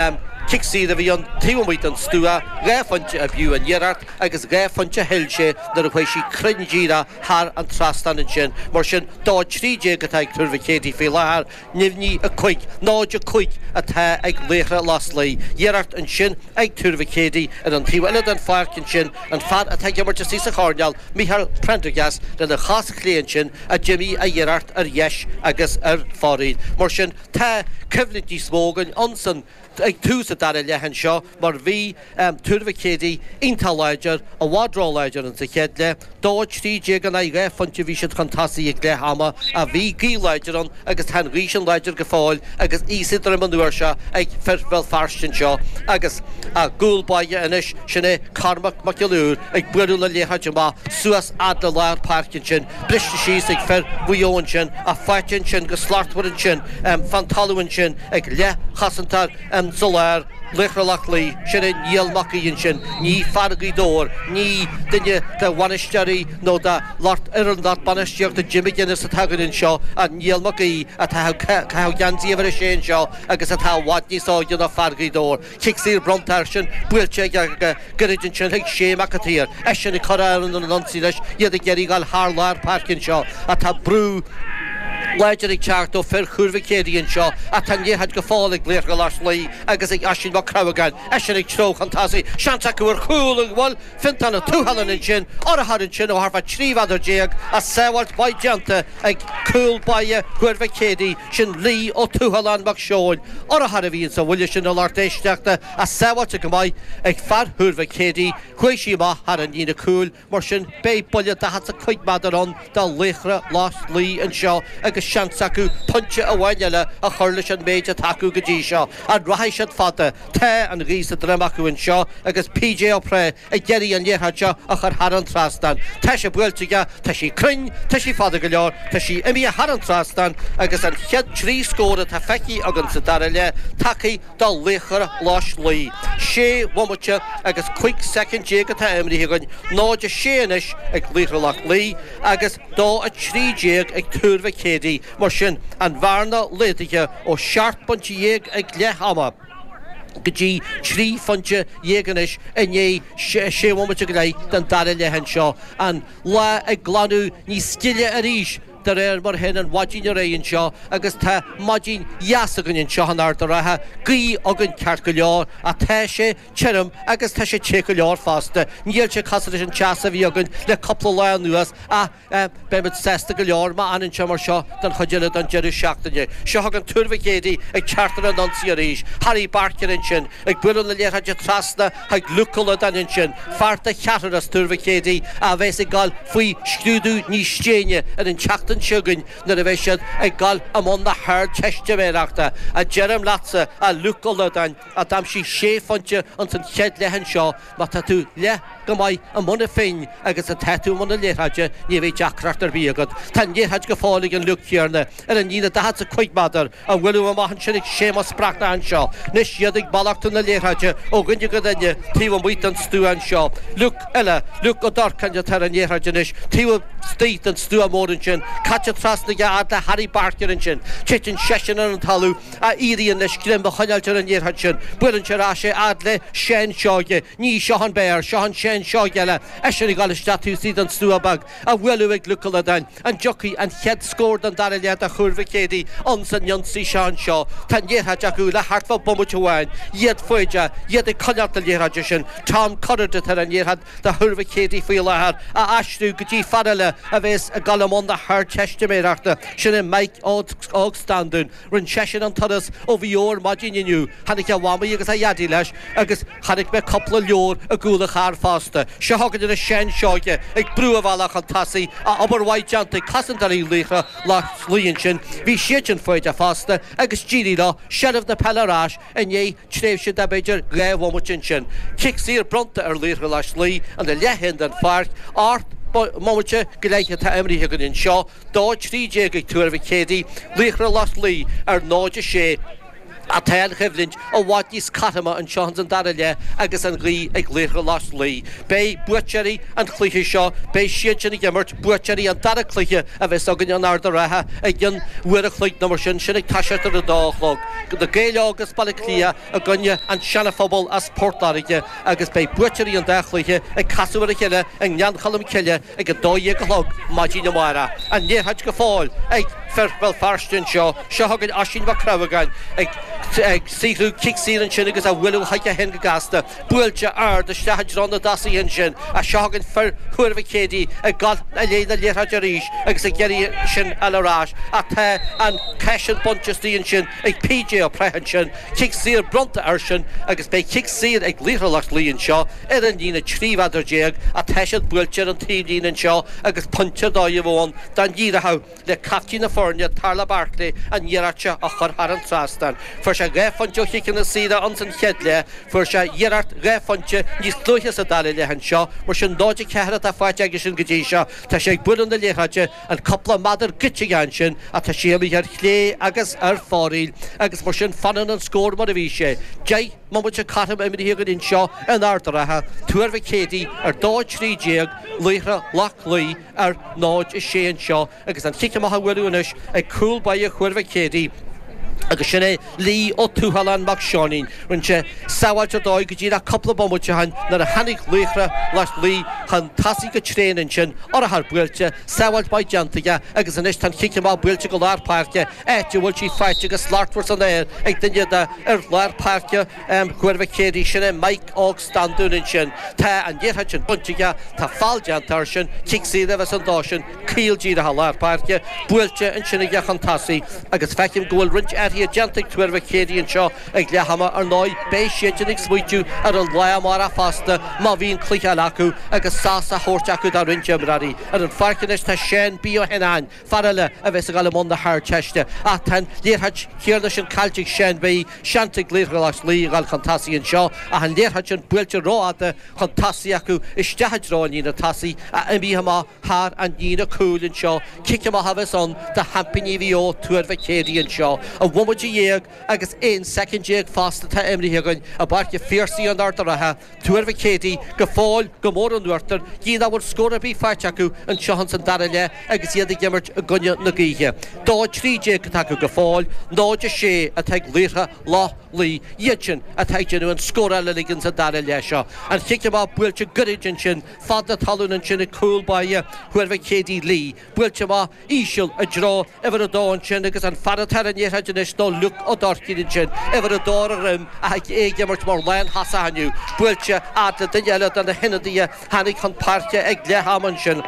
Cic saor a bhí ann taobh amuigh den stua, dhá phointe a b'fhiú an iarracht agus dhá phointe a thuill sé nuair a chuaigh sí cruinn díreach thar an trasnán ansin. Mar sin, 2 13 atá ag Tuar Mhic Éadaigh faoi láthair, neamhní 5, 0 5 atá ag Laochra Loch Lao. Iarracht ansin ag Tuar Mhic Éadaigh ar an taobh eile den pháirc ansin, an fear atá ag imirt istigh sa choirnéal, Micheál Prendergast lena chos chlé ansin a d'imigh a iarracht ar dheis agus ar fóraoil. Mar sin. Tá coimhlint níos mó againn ansin ag tús an dara leath anseo mar bhí Tuar Mhic Éadaigh iontach láidir, i bhfad róláidir insa chéad leath. Dó a trí déag in aghaidh dhá phointe a bhí siad chun tosaigh ag leath ama ach bhí gaoth láidir ann agus tá an ghaoth sin láidir go fóill agus í sa droim an uair seo ag fir Bhéal Feirste anseo agus a gcúl báire anois, sin é Cormac Mac Giolla Uidhir, ag bualadh na liathróide amach suas fhad le lár páirce ansin. briste síos ag fir Mhuigh Eo ansin, ach faighte ansin go slachtmhar ansin fán talamh ansin ag leathchosantóir insa lár, Laochra Loch Lao, sin é Niall Mac Aoidh ansin, ní fear Ghaoth Dobhair, ní duine de bhainisteoirí nó de fhoireann lucht bainistíochta Jim McGuinness atá againn anseo ach Niall Mac Aoidh atá ag caitheamh geansaí uimhir a sé anseo agus atá i bhfad níos óige ná fear Ghaoth Dobhair. Cic saor bronnta airsean, buailte aige go gairid ansin chuig Shay Mac an tSaoir, eisean ag cur ar an ionsaí anois, iad ag iarraidh dul thar lár páirce anseo ach tá brú láidir ag teacht ó fir Thuar Mhic Éadaigh anseo ach tá an liathróid go fóill ag Laochra Loch Lao agus ag Oisín Mac Crabhagáin, eisean ag treabhadh chun tosaigh, seans acu ar chúl ach bhuail Fintán Ó Tuathaláin ansin urchar ansin ó thart fá 13 mhéadar ach sábháilt mhaith déanta ag cúl báire Thuar Mhic Éadaigh. Sin Lee Ó Tuathaláin Mac Seóin, urchar a bhí insa bhuille sin a lucht éisteachta, ach sábháilte go maith ag fear Thuar Mhic Éadaigh, chuaigh sí amach thar an líne cúil, mar sin beidh buille daichead 's a cúig méadar ann do Laochra Loch Lao anseo agus seans acu pointe amháin eile a chur leis an méid atá acu go dtí seo. An rachaidh siad fada? Tá an ghaoth sa droim acu anseo agus PJ Ó Preith ag iarraidh an liathróid seo a chur thar an trasnán. Tá sé buailte aige, tá sí cruinn, tá sí fada go leor, tá sí imithe thar an trasnán agus an chéad trí scór atá feicthe againn sa dara leath tagtha do Laochra Loch Lao. Sé bhomaite agus cúig soicind déag atá imrithe againn, 0-6 anois ag Laochra Loch Lao agus 2-13 ag Tuar Mhic Éadaigh. Mar sin, an bhearna laghdaithe ó sheacht bpointe dhéag ag leath ama. go dtí trí phointe dhéag anois i ndiaidh sé bhomaite go leith den dara leath anseo, an lá ag glanadh níos gile arís de réir mar a théann an mhaidin ar aghaidh anseo agus tá maidin dheas againn anseo in Ard a' Rátha, gaoth againn ceart go leor ach tá sé tirim agus tá sé te go leor fosta. Níl sé cosúil leis an teas a bhí againn le cúpla lá anuas ach. Beidh muid sásta go leor má fhanann sé mar seo don chuid eile den deireadh seachtaine. Seo chugainn Tuar Mhic Éadaigh ag teacht ar an ionsaí arís. Harry Barker ansin ag bualadh na liathróide trasna chuig Luke Ó Loideáin ansin. Fear de cheathrar as Tuar Mhic Éadaigh a bheas ag goil faoi scrúdú níos déine ar an tseachtain seo chugainn nuair a bheidh siad ag goil i mbun na hArdteistiméireachta. A deirim leatsa, a Luke Ó Loideáin, a d'aimsigh sé phointe ins an chéad leath anseo, má tá tú leath chomh maith i mbun an phinn agus atá tú i mbun na liathróide, ní bheidh deacracht ar bith agat. Tá an liathróid go fóill ag an Luke céanna ar an líne daichead 's a cúig méadar, á bhualadh amach ansin ag Séamus Breathnach anseo. Anois iad ag malartú na liathróide ó dhuine go duine taobh amuigh den stua anseo. Luke eile, Luke Ó Dorcáin, atá ar an liathróid anois, taobh istigh den stua mór ansin, caite trasna aige fhad le Harry Barker ansin. Titeann seisean ar an talamh. a éiríonn leis greim a choinneáilt ar an liathróid sin, buaileann sé ar ais é fhad le Seán Seoige, ní seo an Béar, seo an Seán Seoige eile, eisean ag goil isteach taobh istigh den stua beag, á bhualadh ag Luke Ó Loideáin, an dtiocfaidh an chéad scór den dara leath do Thuar Mhic Éadaigh ins an ionsaí seo anseo, tá an liathróid acu le thart fá bhomaite amháin, iad foighdeach, iad ag coinneáilt na liathróide sin, Tom Currid atá ar an liathróid do Thuar Mhic Éadaigh faoi láthair, á aistriú go dtí fear eile a bhéas ag dul i mbun na hArdteistiméireachta, sin é Mike Óg Standún. Rinn seisean an turas ó Mhaigh Eo ar maidin inniu. Tháinig a mhamaí agus a dhaidí leis agus chonaic mé cúpla leabhar i gcúl an chairr fosta. Seo chugainn arís Seán Seoige ag brú a bhealach chun tosaigh, ach obair mhaith déanta ag cosantóirí Laochra Loch Lao ansin. Bhí siadsan foighdeach fosta agus d'éirigh leo seilbh na peile ar ais i ndiaidh tréimhse de b'fhéidir dhá bhomaite ansin. Cic saor bronnta ar Laochra Loch Lao ina leath féin den pháirc, ocht mbomaite go leith atá imeartha againn anseo, 2-13 ag Tuar Mhic Éadaigh, Laochra Loch Lao, ar 0-6, ach tá an choimhlint i bhfad níos cothroime anseo ins an dara leath agus an ghaoth ag Laochra Loch Lao. Beidh buaiteoirí an chluiche seo, beidh siadsan ag imirt, buaiteoirí an dara cluiche a bheas againn in Ard a' Rátha i gcionn uair an chloig nó mar sin, sin ag toiseacht ar a dó a chlog. Na Gaeil Óga as Baile Átha Cliath i gcoinne an Seanaphobal as Port Láirge agus beidh buaiteoirí an dá chluiche ag casadh ar a chéile i nGleann Cholm Cille ag a dó dhéag a chlog maidin amárach. An liathróid go fóill ag fir Bhéal Feirste anseo. Seo chugainn Oisín Mac Crábhagáin ag saothrú cic saor ansin agus á bhualadh chuige féin go gasta. Buailte ard isteach i dtreo na dtosaithe ansin ach seo chugainn fir Thuar Mhic Éadaigh ag dul i ndiaidh na liathróide arís agus ag iarraidh sin a fháil ar ais ach tá an ceann sin bainte as an tslí ansin ag PJ Ó Preith ansin. Cic saor bronnta airsean agus beidh cic saor ag Laochra Loch Lao anseo. Ar an líne 13 mheadar atá sin buailte ar an taobh líne anseo agus pointe dó a bheadh ann dá n-éireodh le caiptín na foirne, Tarlach Barclay, an iarracht seo a chur thar an trasnán. Fuair sé dhá phointe ó chiceanna saora ann san chéad leath. Fuair sé iarracht dhá phointe níos luaithe sa dara leath anseo. Mar sin 0-4 atá faighte aigesean go dtí seo. Tá sé ag bualadh na liathróide an cúpla meadar goidte aige ansin ach tá sí imithe ar chlé agus ar fóraoil agus mar sin fanann an scór mar a bhí sé, deich mbomaite cothrom imrithe againn anseo in Ard a' Rátha, Tuar Mhic Éadaigh ar 2 13 Laochra Loch Lao ar 0 6 anseo agus an chic amach á bhualadh anois ag cúl báire Thuar Mhic Éadaigh agus sin é Lee Ó Tuathaláin mac Seáinín. Rinne sé sábháilt ar dóigh go díreach cúpla bomaite ó shin nuair a tháinig Laochra Loch Lao chun tosaigh go tréan ansin, urchar buailte, sábháilt maith déanta aige agus anois tá an chic amach buailte go lár páirce. áit a bhfuil sí faighte go slachtmhar san aer ag duine de fhir lár páirce Thuar Mhic Éadaigh, sin é Mike Óg Standún. Ansin tá an liathróid sin bainte aige, tá feall déanta airsean, cic saor a bheas ann dósan, caol díreach lár páirce, buailte ansin aige chun tosaigh agus feicim go bhfuil roinnt athruithe déanta ag Tuar Mhic Éadaigh anseo ag leath ama. Ar ndóigh beidh siadsan ag smaoitiú ar an lá amárach fosta má bhíonn cluiche eile acu agus sos á thabhairt acu do roinnt imreoirí. Ar an pháirc anois tá Séan B. Ó hÉanacháin. Fear eile a bheas ag dul i mbun na hArdteiste ach tá an liathróid áirithe sin caillte ag Séan B, seans ag Laochra Loch Lao a dhul chun tosaigh anseo ach an liathróid sin buailte rófhada chun tosaigh acu isteach i dtreo an líne tosaigh í imithe amach thar an líne cúil anseo. Cic amach a bheas ann do sheaimpíní Mhaigh Eo, Tuar Mhic Éadaigh anseo. Aon bhomaite déag agus 11 soicind fosta atá imrithe againn i bPáirc a' Phiarsaigh in Ard a' Rátha, Tuar Mhic Éadaigh, go fóill, go mór in uachtar, gidh nach bhfuil scór ar bith faighte acu anseo ins an dara leath agus iad ag imirt i gcoinne na gaoithe. Dó a trí déag atá acu go fóill, 0 a sé atá ag Laochra Loch Lao, iadsan atá ag déanamh an scóráil uilig ins an dara leath seo. An chic amach buailte gairid ansin, fada talún ansin ag cúl báire Thuar Mhic Éadaigh Lee, Buailte amach íseal i dtreo uimhir a dó ansin agus an fear atá ar an liathróid anois ná Liúc Ó Duircín ansin, uimhir a dó ar a dhroim, ach é ag imirt mar lántosach inniu. Buailte fhad le duine eile de na hionadaithe a tháinig chun páirce ag leath ama ansin.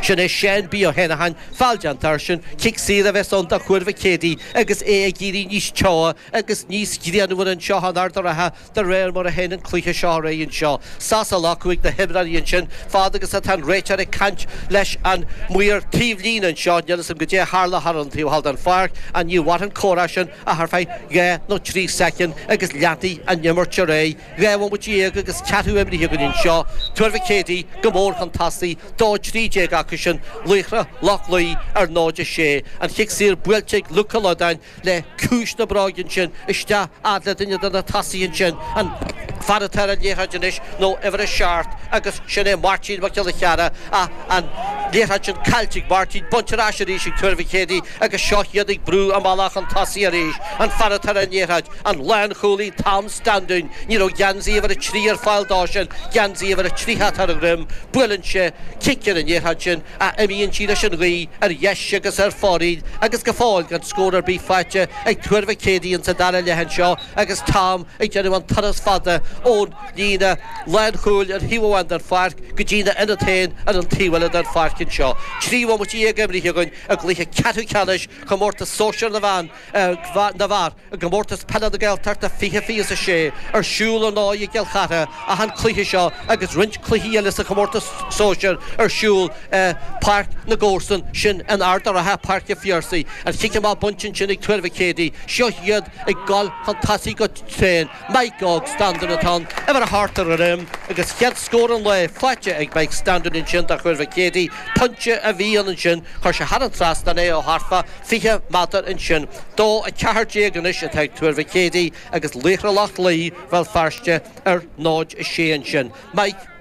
Sin é Séan B. Ó hÉanacháin, feall déanta airsean, cic saor a bheas ann do Thuar Mhic Éadaigh agus é ag éirí níos teo agus níos grianmhaire anseo in Ard a' Rátha. De réir mar a théann an cluiche seo ar aghaidh anseo, sos á ghlacadh ag na himreoirí ansin, fad agus atá an réiteoir ag caint leis an maor taobh líne anseo, níl 'fhios a'm goidé a tharla thar an taobh thall den pháirc, ach ní mhairfidh an comhrá sin ach ar feadh dhá nó trí soicind agus leanfaidh an imirt ar aghaidh. Dhá bhomaite dhéag agus ceathrú imithe againn anseo. Tuar Mhic Éadaigh go mór chun tosaigh, dó trí déag acusan, Laochra Loch Lao ar 0, 6. An chic saor buailte ag Luke Ó Loideáin. le ciumhais na bróige ansin, isteach fhad le duine de na tosaithe ansin, an fear atá ar an liathróid anois, ná uimhir a seacht, agus sin é Máirtín Mac Giolla Chearra, ach an liathróid sin caillte ag Máirtín, bainte ar ais arís ag Tuar Mhic Éadaigh, agus seo iad ag brú a mbealach chun tosaigh arís, an fear atá ar an liathróid, an lánchúlaí Tom Standún, ní raibh geansaí uimhir a trí ar fáil dó sin, geansaí uimhir a tríocha atá ar a dhroim, buaileann sé cic ar an liathróid sin, ach imíonn sí leis an ghaoth ar dheis agus ar fóraoil agus go fóill gan scór ar bith faighte ag Tuar Mhic Éadaigh insa dara leath anseo agus Tom ag déanamh an turas fada ón líne lánchúil ar thaobh amháin den pháirc go dtína ionad féin ar an taobh eile den pháirc anseo. Trí bhomaite dhéag imrithe againn i gcluiche ceathrú ceannais Chomórtas Sóisear na mBan na bhFear. I gComórtas Peile na Gaeltachta fiche fiche a sé, ar siúl ar ndóigh i gCill Chartha ach an cluiche seo agus roinnt cluichí eile sa chomórtas sóisir ar siúl i bpáirc na gcomharsan, sin in Ard a' Ratha, Páirc a' Phiarsaigh. An cic amach bainte ansin ag Tuar Mhic Éadaigh, seo iad ag goil chun tosaigh go tréan. Mike Óg Standún atá ann, uimhir a hocht ar a dhroim, agus chéad scór an lae faighte ag Mike Standún ansin do Thuar Mhic Éadaigh. Pointe a bhí ann ansin, chuir sé thar an trasnán é ó thart fá fiche méadar ansin. Dó a ceathair déag anois atá ag Tuar Mhic Éadaigh agus Laochra Loch Lao, Bhéal Feirste, ar náid a sé ansin. Mike.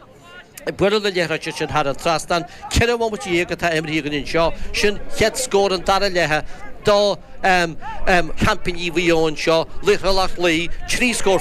Bualadh na liathróide sin thar an trasnán ceithre bhomaite dhéag atá imrithe againn anseo, sin chéad scór an dara leithe do sheaimpíní Mhaigh Eo anseo, Laochra Loch Lao, trí scór